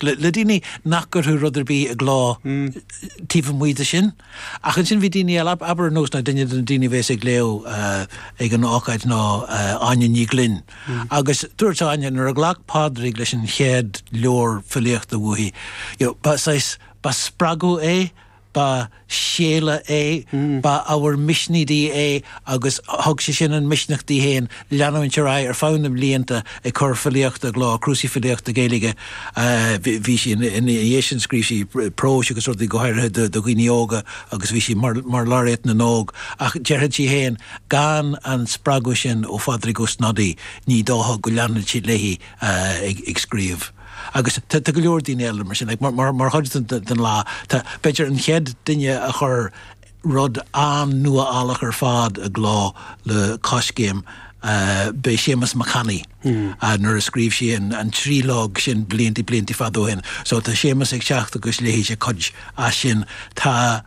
le daoine nach gcuirfeadh rud ar bith i gcló taobh amuigh de sin. Ach ansin bhí daoine eile, abair ar nós ná duine de na daoine a bhéas ag léamh ag an ócáid ná Áine Ní Ghlinn. Agus dúirt Áine nuair a ghlac Pádraig leis an chéad leabhar filíochta uaithi, you know, ba saghas, ba spreagadh é, ba séala é, ba ábhar misnigh di é agus thug sé sin an misneach di féin leanúint ar aghaidh ar feadh na mblianta ag cur filíochta i gcló, cnuasaigh filíochta Gaeilge. Bhí sí, ina dhiaidh sin scríobh sí próis agus rudaí go háirithe do dhaoine óga agus bhí sí mar Laureate na nÓg ach déarfadh sí féin gan an spreagadh sin ó Phádraig Ó Snodaigh ní dócha go leanfadh sí léi ag scríobh. Agus tá go leor daoine eile mar sin. Mar chuid den lá, tá, b'fhéidir, an chéad duine a chuir rud an-nuálach ar fad i gcló le Coiscéim, b'é Séamas Mac Annaidh, nuair a scríobh sé an tríológ sin blianta, blianta fada ó shin. So, tá Séamas ag teacht agus léifidh sé cuid as sin. Tá.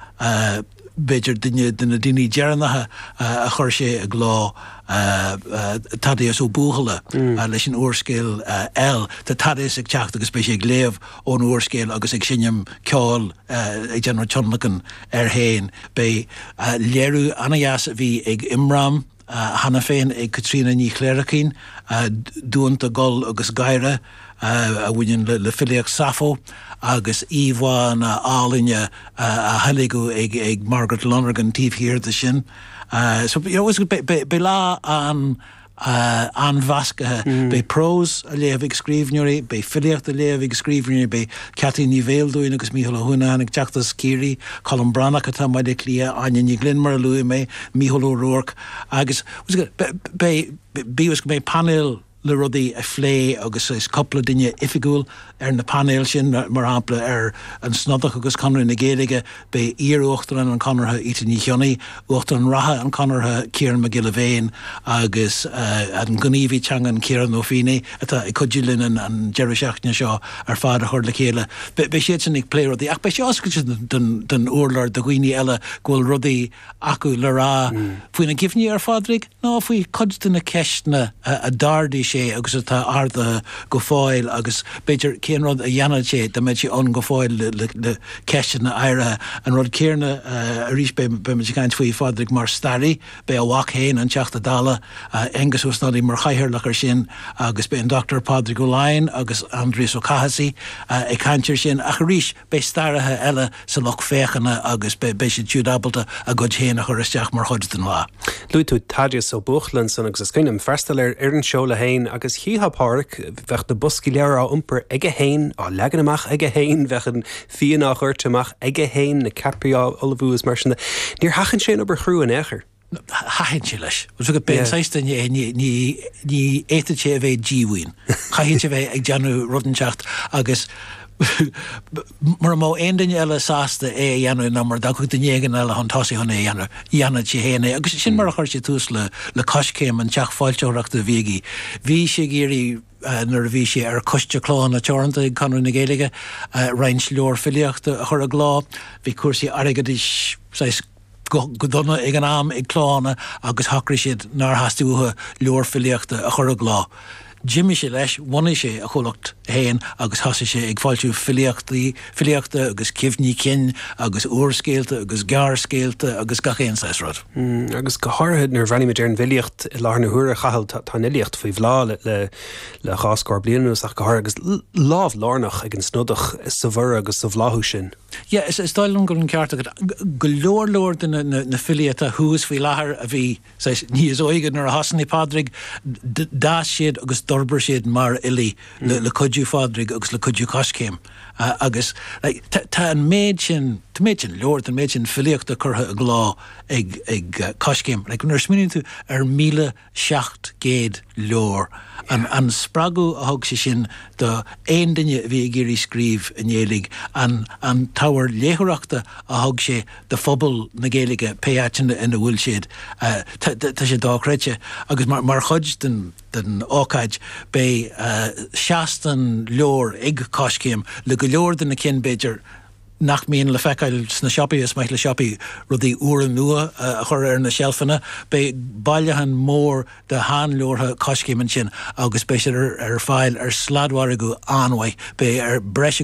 b'fhéidir duine de na daoine deireanacha a chuir sé i gcló, Thaddeus Ó Buachalla leis an úrscéal El. Tá Thaddeus ag teacht agus beidh sé ag léamh ón úrscéal agus ag seinm ceoil, ag déanamh tionlacain air féin. Beidh léiriú an-deas a bhí ag Imram. cheana féin ag Caitríona Ní Chléirchín, Duanta, Gol agus Gáire, a bhaineann le filíocht Sappho, agus íomhánna álainne a theilgeadh ag Margaret Lonergan taobh thiar de sin. So, you know, beidh lá an-mheascaithe. Beidh prós á léamh ag scríbhneoirí, beidh filíocht á léamh ag scríbhneoirí, beidh Ceaití Ní Bheildiúin agus Mícheál Ó hUanacháin ag teacht as Ciarraí, Colm Breathnach atá i mBaile Átha Cliath, Áine Ní Ghlinn mar a luaigh mé, Mícheál Ó Ruairc agus beidh, bíodh is go mbeidh painéal le rudaí a phlé agus cúpla duine oifigiúil ar na painéil sin, mar shampla ar an Snodach agus Conradh na Gaeilge, Beidh iar-Uachtarán an Chonartha Íte Ní Chionnaith, Uachtarán reatha an Chonartha Ciarán Mac Giolla Bhéin agus an gníomhaí teangan Ciarán Ó Feinneadha, atá ag cuidiú linn an deireadh seachtaine seo ar fad a chur le chéile, beidh siadsan ag plé rudaí ach beidh sé oscailte don urlár do dhaoine eile go bhfuil rudaí acu le rá faoina gcuimhní ar Phádraig ná faoi chuid de na ceisteanna a d'ardaigh sé agus atá ardaithe go fóill agus, b'fhéidir, cén rud a dhéanfadh sé dá mbeadh sé ann go fóill le ceisteanna áirithe. An rud céanna arís, beimid ag caint faoi Phádraig mar staraí, beidh a mhac féin, an Teachta Dála, Aengus Ó Snodaigh, mar chathaoirleach air sin agus beidh an Dr Pádraig Ó Laighin agus Aindrias Ó Cathasaigh ag caint air sin ach, arís, Beidh staraithe eile sa lucht féachana agus beidh siad siúd ábalta a gcuid féin a chur isteach mar chuid den lá. Luaigh tú Thaddeus Ó Buachalla san agus is cuimhin liom freastal ar an seoladh féin agus chífeá Pádhraic, bheadh na boscaí leabhar á iompar aige féin, á leagan amach aige féin, bheadh an fíon á dhoirteadh amach aige féin, na ceapairí á ullmhú is mar sin de. Níor sheachain sé an obair chrua in aon chor. Thaitin sé leis. B'é an saghas duine é, ní fhéadfadh sé a bheith díomhaoin. Chaithfeadh sé a bheith ag déanamh rud inteacht agus mura mbeadh aon duine eile sásta é a dhéanamh ná mura dtiocfadh duine éigin eile chun tosaigh chun é a dhéanamh, dhéanfadh sé féin é. Agus sin mar a chuir sé tús le Coiscéim, an teach foilsitheoireachta a bhí aige. Bhí sé ag iarraidh, nuair a bhí sé ar Choiste Clódhanna Teoranta ag Conradh na Gaeilge, roinnt leabhar filíochta a chur i gcló. Bhí cúrsaí airgeadais saghas. go dona ag an am ag Clódhanna agus shocraigh siad nár theastaigh uathu leabhar filíochta a chur i gcló. D'imigh sé leis, bhunaigh sé a chomhlacht féin agus thosaigh sé ag foilsiú filíochta agus cuimhní cinn agus úrscéalta agus gearrscéalta agus gach aon saghas rud. Agus go háirithe nuair a bhreathnaímid ar an bhfilíocht i láthair na huaire, a Chathail, tá an fhilíocht faoi bhláth le dhá scór bliain anuas ach go háirithe agus lámh lárnach ag an Snodach sa bhorradh agus sa bhláthú sin. Yeah, is dóigh liom go bhfuil an ceart agat. Go leor, leor de na filí atá thuas faoi láthair a bhí, saghas, níos óige nuair a thosnaigh Pádraig, d'fhás siad agus d'fhorbair siad mar fhilí le cuidiú Phádraig agus le cuidiú Coiscéim. Agus, like, tá an méid sin, tá an méid sin leabhar, tá an méid sin filíochta curtha i gcló ag Coiscéim. Like, nuair a smaoiníonn tú ar 1,000. 700 leabhar. An spreagadh a thug sé sin do aon duine a bhí ag iarraidh scríobh i nGaeilge, an t-ábhar léitheoireachta a thug sé do phobal na Gaeilge, pé áiteanna ina bhfuil siad, tá sé dochreidte. Agus mar chuid den ócáid beidh seastáin leabhar ag Coiscéim le go leor de na cinn, b'fhéidir, nach mbíonn le feiceáil sna siopaí, is maith le siopaí rudaí úra nua a chur ar na seilfeanna. Beidh bailiúchán mór de sheanleabhartha Coiscéim ansin agus beidh siad ar fáil ar sladmhargadh an-mhaith. Beidh breis